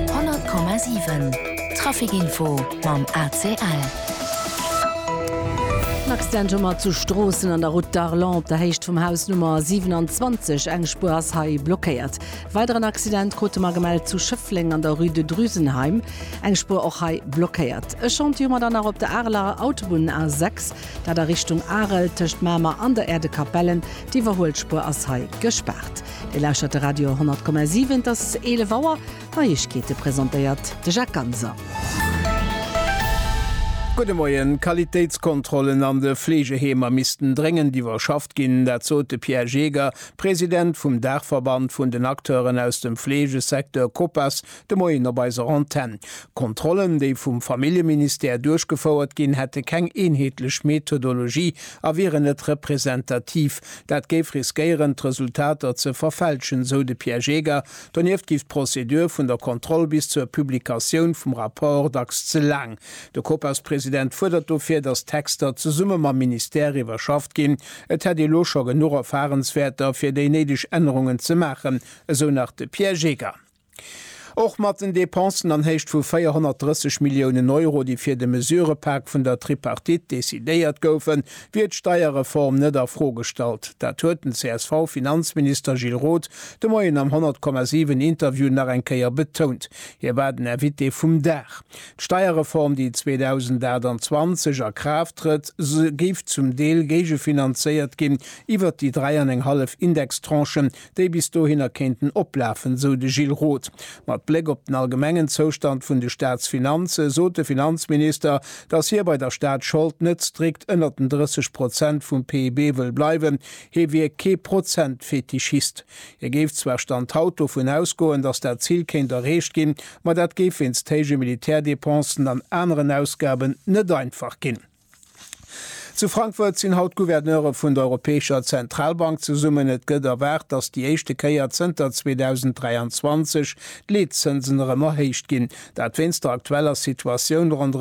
100,7 Trafic Info mam ACL. En Accident hu mer zu Stroossen an der Route d'Arlon op der Héicht vum Haus Nummer 27. Eng Spuer ass hei blockéiert. Weideren Accident krute mer gemellt zu Schëffleng an der Rue de Drusenheim. Eng Spuer och hei blockéiert. E Chantier hu mer dann nach op der Areler Autobunn A6, dat a Richtung Arel tëscht Mamer an der Äerdekapellen. D'Iwwerhuelspuer ass hei gespaart. Dir lauschtert de Radio 10,7. Et ass 11 Auer. D'Neiegkeete presentéiert de Jacques Ganser. Gudde Moien. D'Qualitéitskontrollen an de Fleegeheemer missten dréngend iwwerschafft ginn. Dat sot de Pierre Jaeger, President vum Daachverband vun den Acteuren aus dem Fleegesecteur, Copas, De Moien op eiser Antenn. D'Kontrollen, déi vum Familljeministère duerchgefouert ginn, hätte keng eenheetlech Methodologie a wieren net representativ. Dat géif riskéieren, d'Resultater ze verfälschen, sou de Pierre Jeger. Donieft géif d'Prozedur vun der Kontroll bis zur Publikatioun vum Rapport dacks ze laang. De Copas-President fuerdert dofir, datt d'Texter zesumme mam Ministère iwwerschafft ginn. Et hätt ee lo scho genuch Erfarenswäerter, fir déi néideg Ännerungen ze maachen, esou nach de Pierre Jeger. Och mat den Depensen an Héicht vu 430 Milliounen Euro, déi fir de Mesurëpak vun der Tripartite decidéiert goufen, wier d'Steierreform net a Fro gestallt. Dat huet den CSV-Finanzminister Gilles Roth de Moien am 100,7 Interview nach eng Kéier betount. Hie war den Invité vum Dag. D'Steierreform, déi 2028 a Kraaft trëtt, géif zum Deel géigefinanzéiert ginn iwwert déi dräi an eng hallef Indextranchen, déi bis dohinner kéinten oplafen, sou de Gilles Roth. Mat Bléck op den allgemengen Zoustand vun de Staatsfinanze sot de Finanzminister, datt hie bei der Staatsschold net strikt ënnert den 30 Prozent vum PIB wëll bleiwen. Hie wier kee Prozentfetischist. Hie géif zwar Stand haut dovun ausgoen, datt dat Zil kéint erreecht ginn, ma dat géif wéinst héije Militärdepensen an aneren Ausgaben net einfach ginn. Zu Frankfurt sinn haut d'Gouverneure vun der Europäescher Zentralbank zesummen. Et gëtt erwaart, datt déi éischte Kéier zënter 2023 d'Leetzënsen erëm erhéicht ginn. Dat wéinst der aktueller Situatioun ronderëm